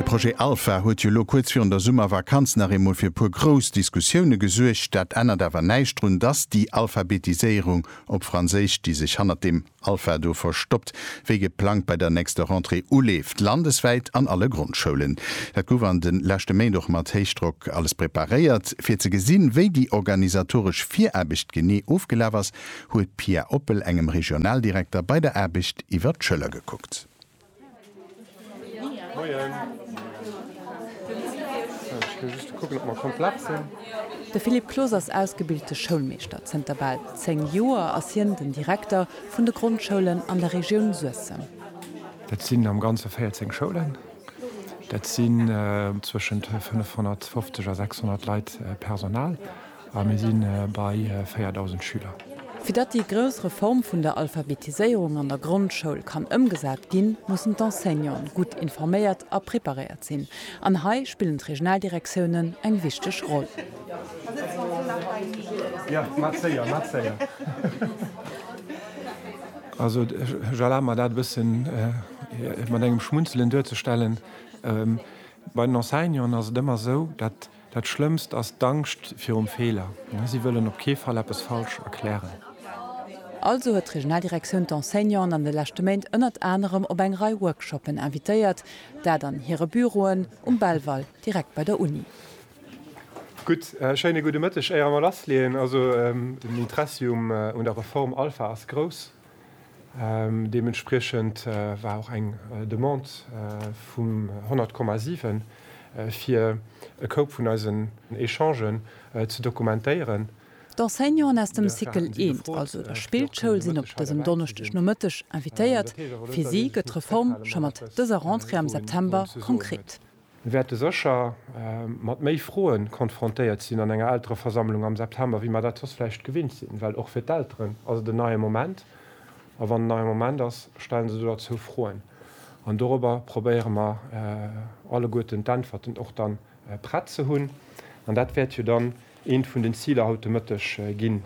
De Projet Alpha huet jo elo kuerz virun der Summervakanz nach eemol fir e puer grouss Diskussioune gesuergt. Dat ännert awer näischt drun, dass déi Alphabetiséierung, op Franséisch, déi sech hannert deem Alpha do verstoppt, wéi geplangt bei der nächster Rentrée uleeft, landeswäit an alle Grondschoulen. Dat gouf an de leschte Méint och mat Héichdrock alles preparéiert. Fir ze gesinn, wéi déi organisatoresch Viraarbecht genee ofgelaf ass, huet d'Pia Oppel engem Regionaldirekter bei der Aarbecht iwwer d'Schëller gekuckt. De Philippe Clos ass ausgebilte Schoulmeeschter. Zënter bal 10 Joer ass hien den Direkter vun de Grondschoulen an der Regioun Suessem. Dat sinn am Ganze 14 Schoulen. Dat sinn zwëschent 550 a 600 Leit Personal. A mir si bei 4.000 Schüler. Fir datt déi grouss Reform vun der Alphabetiséierung an der Grondschoul kann ëmgesat ginn, mussen d'Enseignanten gutt informéiert a preparéiert sinn. An hei spillen d'Regionaldirektiounen eng wichteg Roll. Also, ech erlabe mer dat e bësse mat engem Schmunzelen duerzestellen. Bei den Enseignanten ass et ëmmer esou, datt. Dat Schlëmmst ass d'Angscht virum Feeler. Si wëllen op kee Fall eppes falsch erklären. Also huet d'Regionaldirektioun d'Enseignanten an de leschte Méint ënnert anerem op eng Rei Workshoppen invitéiert. Dat an hire Büroen um Belval, direkt bei der Uni. Gutt, schéine gudde Mëtteg. Éier mer lassleeën, also den Interessi un der Reform Alpha ass grouss. Deementspriechend war och eng Demande vum 100,7 fir e Koup vun eisen Echangen ze dokumentéieren. D'Enseignanten aus dem Cycle 1, also der Spillschoul, sinn op dësem Donneschdegnomëtteg invitéiert. Fir si gëtt d'Reform scho mat dëser Rentrée am September konkret. Mir wäerte sécher mat méi Froe konfrontéiert sinn an enger Eltereversammlung am September, wéi mer dat soss vläicht gewinnt sinn, well och fir d'Elteren ass et en neie Moment. A wann en neie Moment ass, stellen se doderzou Froen. An dorobber probéiere mer alleguerten d'Äntwerten och dann prett ze hunn. An dat wäert jo dann Eent vun den Ziler haut de Mëtteg ginn.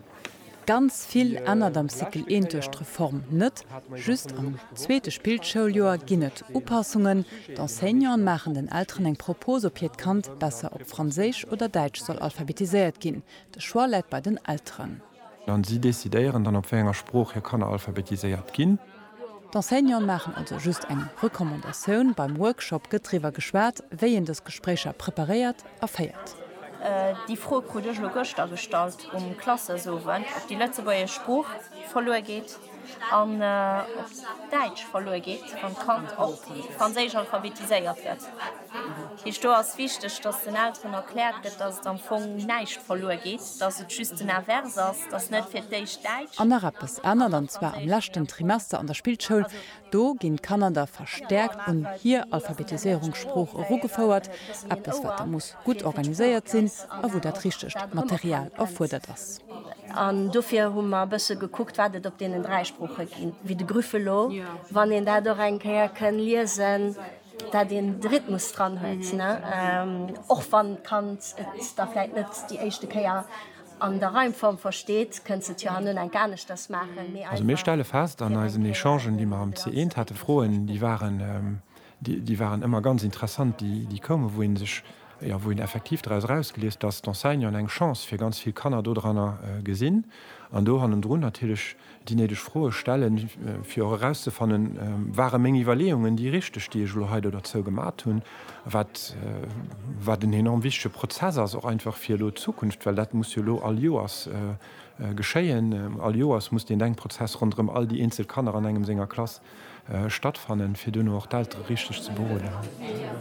Ganz vill ännert am Cycle I duerch d'Reform net. Just am zweete Spillschouljoer ginn et Upassungen. D'Enseignanten maachen den Elteren eng Propos, ob hiert Kand besser op Franséisch oder Däitsch soll alphabetiséiert ginn. De Choix läit bei den Elteren. An si decidéieren dann, op wéi enger Sprooch hir Kanner alphabetiséiert ginn. D'Enseignanten maachen also just eng Recommandatioun. Beim Workshop gëtt driwwer geschwat, wéi een dës Gespréicher preparéiert a féiert. Déi Fro krut ech elo gëschter gestallt um Klassesowend, ob déi lëtzebuergesch Sprooch verluer geet an ob d'Däitsch verluer geet, wann d'Kand op Franséisch alphabetiséiert gëtt. Heescht do ass wichteg, dass den Elteren erkläert gëtt, dass et am Fong näischt verluer geet, dass et just den Invers ass, dass net fir d'éischt Däitsch. An nach eppes ännert, an zwar am leschten Trimester an der Spillschoul. Do ginn d'Kanner da verstäerkt un hir Alphabetiséierung, Sprooch, erugefouert, eppes wat da muss gutt organiséiert sinn a wou dat richtegt Material erfuerdert ass. An dofir hu mer e bësse gekuckt, wat et op deenen dräi Sprooche ginn, wéi de Grüffelo, wann een dat och eng Kéier kënn liesen. dat een de Rhythmus dran huet, och wann d'Kand et da vläit net déi éischte Kéier an der Reimform versteet, kënnt se et jo hanno enk aneschters maachen, méi einfach. Also mir stelle fest an eisen Echangen, déi mer am C1 haten, Froen, déi waren, déi waren ëmmer ganz interessant, déi, déi koumen, wou ee sech, jo, wou een effektiv draus erausgeliest, dass d'Enseignanten eng Chance fir ganz vill Kanner dodranner gesinn an do hannendrun natierlech, déi néideg Froe stellen, fir och erauszefannen, Ware meng Iwwerleeungen déi richteg, déi ech elo hei do derzou gemat hunn? Wat, wat en enorm wichtege Prozess ass, och einfach fir elo d'Zukunft, well dat muss jo elo all Joers geschéien. All Joers muss deen Denkprozess ronderëm all déi eenzel Kanner an engem senger Klass Stattfannen, fir duerno och d'Eltere richteg ze beroden.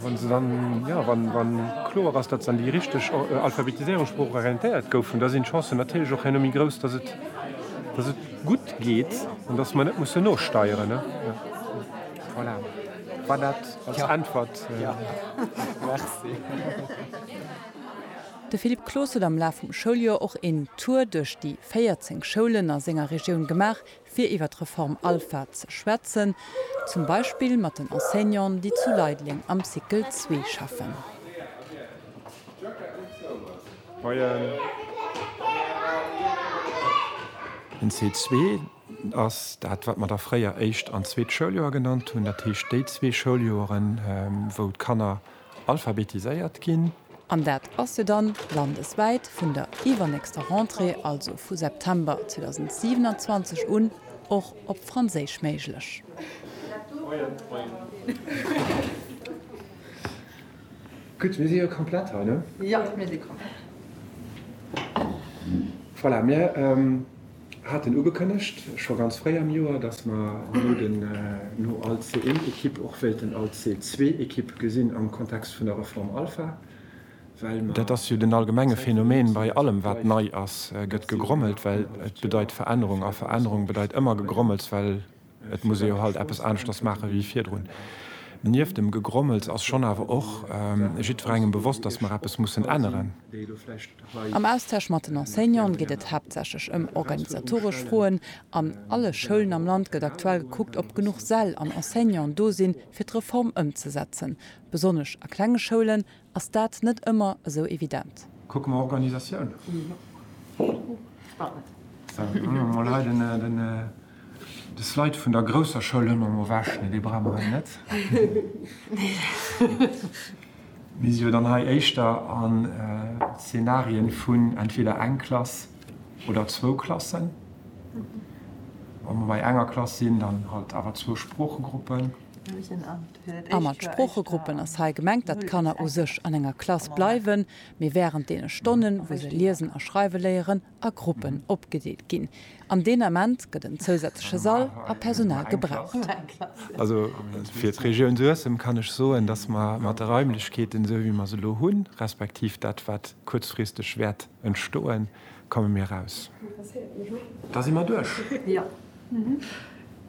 Wann se dann, jo, wann kloer ass, datt se an déi richteg alphabetiséierung, Sprooch, orientéiert goufen, da sinn d'Chancen natierlech och herno méi grouss, datt et gutt geet an datt mer net mussen nosteieren. Voilà, war dat als Äntwert. Jo, merci. De Philippe Cloos huet am Laf vum Schouljoer och een Tour duerch déi 14 Schoulen a senger Regioun gemaach, fir iwwer d'Reform Alpha ze schwätzen, zum Beispill mat den Enseignanten, déi zu Leideleng am Cycle 2 schaffen. Den Cycle 2 ass dat, wat mer da fréier éischt an zweet Schouljoer genannt hunn, dat heescht déi zwee Schouljoren, wou d'Kanner alphabetiséiert ginn. An dat ass jo dann landeswäit vun der iwwernächster Rentrée, also vu September 2027 un, och op Franséisch méiglech. Gutt, mir si jo komplett hei, ne? Jo, mir si komplett. Voilà, mir. haten ugekënnegt scho ganz fréi am Joer, dass mer no den no al C1-Equipe och wéilten al C2-Equipe gesinn am Kontext vun der Reform Alpha, well mer. Dat ass jo den allgemenge Phänomen bei allem wat nei ass, gëtt gegrommelt, well et bedeit Verännerung a Verännerung bedeit ëmmer Gegrommels, well. Et muss ee jo halt eppes aneschters maache wéi virdrun. Nieft dem Gegrommels ass schonn awer och jiddwerengem bewosst, datt mer eppes mussen änneren. Am Austausch mat den Enseignante geet et haaptsächlech ëm organisatoresch Froen. An alle Schoulen am Land gëtt aktuell gekuckt, ob genuch Säll an Enseignanten do sinn, fir d'Reform ëmzesetzen. Besonnesch a klenge Schoulen ass dat net ëmmer esou evident. Kucke mer Organisatioun. Mer leiden de Slide vun der grousser Schoul hunn mer mol ewech, mee dee brauche mer hei net. Mir si jo dann hei éischter a Zenarien vun entweder eng Klass oder zwou Klassen. Wa mer bei enger Klass sinn, dann halt awer zwou Sproochegruppen. A mat Sproochegruppen ass hei gemengt, datt d'Kanner u sech an enger Klass bleiwen, mee wärend deene Stonnen, wou se liesen a schreiwe léieren, a Gruppen opgedeelt ginn. An deen Ament gëtt en zousätzleche Sall a Personal gebraucht. Also fir d'Regioun Suessem kann ech soen, datt mer mat de Raimlechkeeten, esou wéi mer se elo hunn, respektiv dat, wat kuerzfristeg wäert entstoen, komme mir aus. Da si mer duerch.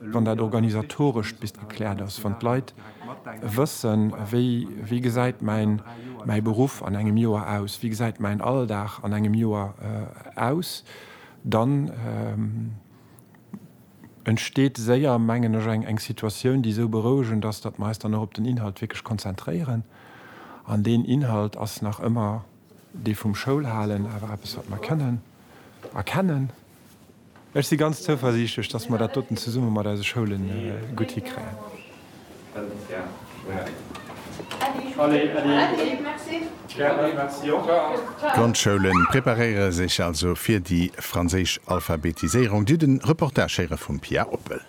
Wann dat organisatorescht bis gekläert ass, wann d'Leit wëssen, wéi, wéi gesäit mäin, mäi Beruff an engem Joer aus, wéi gesäit mäin Alldag an engem Joer aus, dann entsteet séier, mengen ech, eng, eng Situatioun, déi esou berouegend ass, datt mer eis dann och op den Inhalt wierklech konzentréieren. An deen Inhalt ass nach ëmmer dee vum Schoulhalen, awer eppes, wat mer kënnen erkennen. Ech si ganz zouversiichtlech, datt mer dat doten zesumme mat eise Schoule gutt hikréien. D'Grondschoulen preparéiere sech also fir déi franséisch Alphabetiséierung, dir den Reportage héiere vum Pia Oppel.